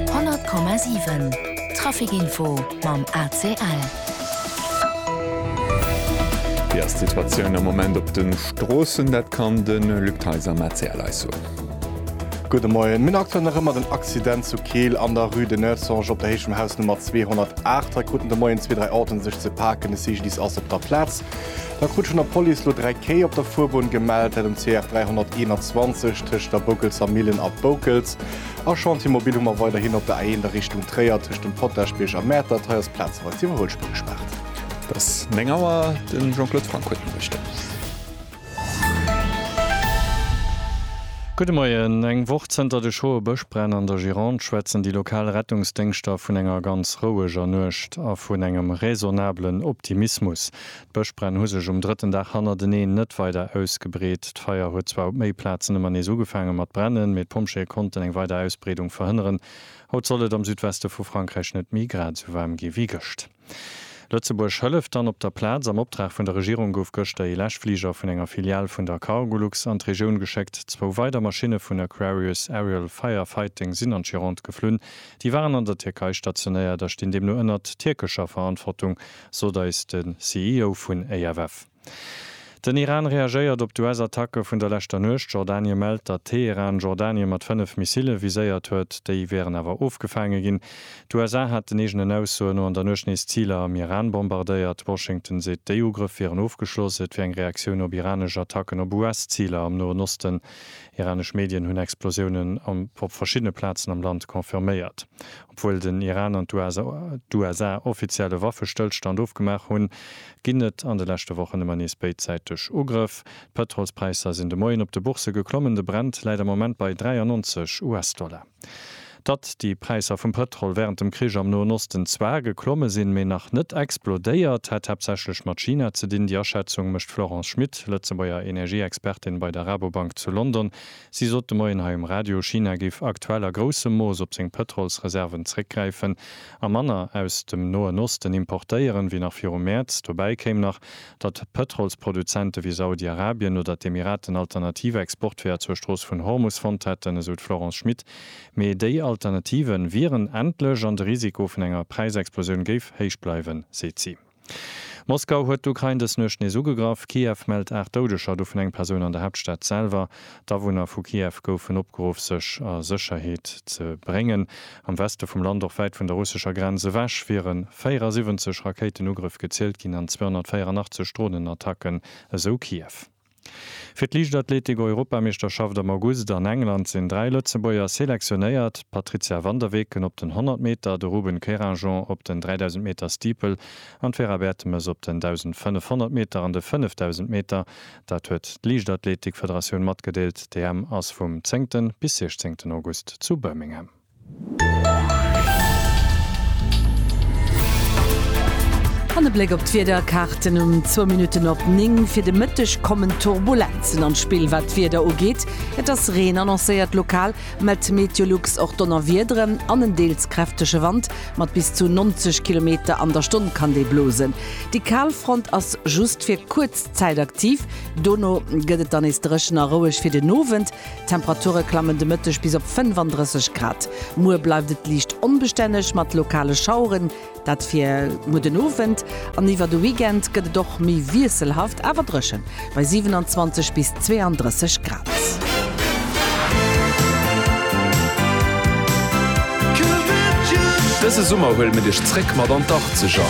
100,7 Trafic Info mam ACL. Wéi ass d'Situatioun am Moment op de Stroossen? Dat kann de Luc Theis am ACL eis soen. Gudde Moien. Mir hunn aktuell nach ëmmer den Accident zu Keel an der Rue de Neussange op der Héicht vum Haus Nummer 208. Hei kruten de Moien zwee, dräi Autoen sech ze paken. De CGDIS ass op der Plaz. Da krut schonn der Police lo 3 Kéi op der Fuerbunn gemellt, dat um CF 321 tëscht der Boukelser Millen a Boukels. A Chantier Mobil hu mer weiderhin op der A1 a Richtung Tréier tëscht dem Potagebierg a Mäertert. Hei ass plazeweis d'Iwwerhuelspuer gespaart. Et ass 9 Auer, de Jean-Claude Franck huet d'Noriichten. Gudde Moien. Eng Woch zënter de schroe Bëschbränn an der Gironde schwätzen déi lokal Rettungsdéngschter vun enger ganz roueger Nuecht a vun engem raisonnabelen Optimismus. D'Bëschbränn hu sech um drëtten Dag hannerteneen net weider ausgebreet. D'Feier huet zwar op méi Plazen ëmmer nees ugefaange mat brennen, mee d'Pompjeeë konnten eng weider Ausbreedung verhënneren. Haut soll et am Südweste vu Frankräich net méi grad esou waarm gi wéi gëscht. Lëtzebuerg hëlleft dann op der Plaz. Am Optrag vun der Regierung gouf gëschter ee Läschfliger vun enger Filial vun der Cargolux an d'Regioun geschéckt. Zwou weider Maschinne vun Aquarius Aerial Fire Fighting sinn an d'Gironde geflunn. Déi waren an der Tierkei stationéiert a stinn deemno ënnert tierkescher Verantwortung. sot eis de CEO vun AFF. Den Iran reagéiert op d'US-Attacke vun der leschter Nuecht. Jordanie mellt, datt Teheran Jordanien mat 5 Missile viséiert huet. Déi wieren awer ofgefaange ginn. D'USA haten eegenen Aussoen no an der Nuecht nees Ziler am Iran bombardéiert. Washington seet, déi Ugrëff wieren ofgeschloss. Et wier eng Reaktioun op iranesch Attacken op US-Ziler am Noen Osten. Iranesch Medien hunn Explosiounen op verschiddene Plazen am Land confirméiert. Obwuel den Iran an d'USA offiziell e Waffestëllstand ofgemaach hunn, ginn et an de leschte Wochen ëmmer nees béidsäiteg Ugrëff. D'Pëtrolspräisser sinn de Moien op de Boursë geklommen, de Brent läit am Moment bei 93 US-Dollar. Datt déi Präisser vum Pëtrol wärend dem Krich am Noen Osten zwar geklomme sinn, mee nach net explodéiert, hätt haaptsächlech mat China ze dinn. Déi Aschätzung mécht d'Florence Schmit, Lëtzebuerger Energieexpertin bei der Rabobank zu London, Si sot de Moien hei um Radio, China géif aktuell a groussem Mooss op seng Pëtrolsreserven zréckgräifen a manner aus dem Noen Osten importéieren, wéi nach viru Mäerz. Dobäi kéim nach, datt Pëtrolsproduzente wéi Saudi-Arabien oder d'Emiraten alternativ Exportweeër zur Strooss vun Hormus fonnt hätten, esou d'Florence Schmit. Mee déi Alternative wieren endlech an de Risiko vun enger Präisexplosioun géif héich bleiwen, seet si. Moskau huet d'Ukrain dës Nuecht nees ugegraff. Kiew mellt 8 Doudeger, dovun eng Persoun an der Haaptstad selwer. D'Awunner vu Kiew goufen opgeruff, sech a Sécherheet ze bréngen. Am Weste vum Land, och wäit vun der russescher Grenz ewech, wiere 74 Rakéitenugrëff gezielt ginn an 284 Dronenattacken, esou Kiew. Fir d'Liichtathletik-Europameeschterschaft am August an England sinn dräi Lëtzebuerger selektionéiert, d'Patrizia van der Weken op den 100 Meter, de Ruben Querinjean op den 3000 Meter Steeple an d'Vera Bertemes op den 1500 Meter an de 5000 Meter. Dat huet d'Liichtathletik-Federatioun matgedeelt. D'EM ass vum zéngte bis 16 August zu Birmingham. An e Bléck op d'Wiederkaarten um zwou Minutten op 9. Fir de Mëtteg kommen Turbulenzen an d'Spill, wat d'Wieder ugeet. Et ass Reen annoncéiert, lokal mellt Meteolux och Donnerwiederen an en deels kräftege Wand. Mat bis zu 90 Kilometer an der Stonn kann dee blosen. Déi Kalfront ass just fir kuerz Zäit aktiv, dono gëtt et dann nees dréchen a roueg. Fir den Owend D'Temperature klammen de Mëtteg bis op 35 Grad. Muer bleift et liicht onbestänneg mat lokale Schaueren, dat fir muer den Owend. An iwwer de Weekend gëtt et och méi wiesselhaft, awer dréchen, bei 27 bis 32 Grad. Dëse Summer huele mir dech zréck mat an d'Achtzeger!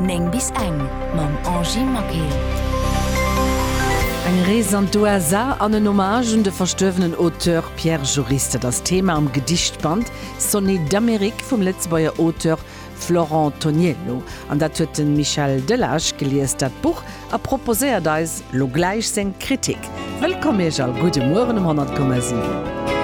9 bis eng mam Angie Maquet. Eng Rees an d'USA an en Hommage un de verstuerwenen Auteur Pierre Joris, dat ass d'Thema am Gedichtband Sonnets d'Amérique vum Lëtzebuerger Auteur Florent Toniello. An dat huet de Michel Delage gelies, dat Buch, a proposéiert eis lo gläich seng Kritik. Wëllkomm Iech all, gudde Mueren um 100,7.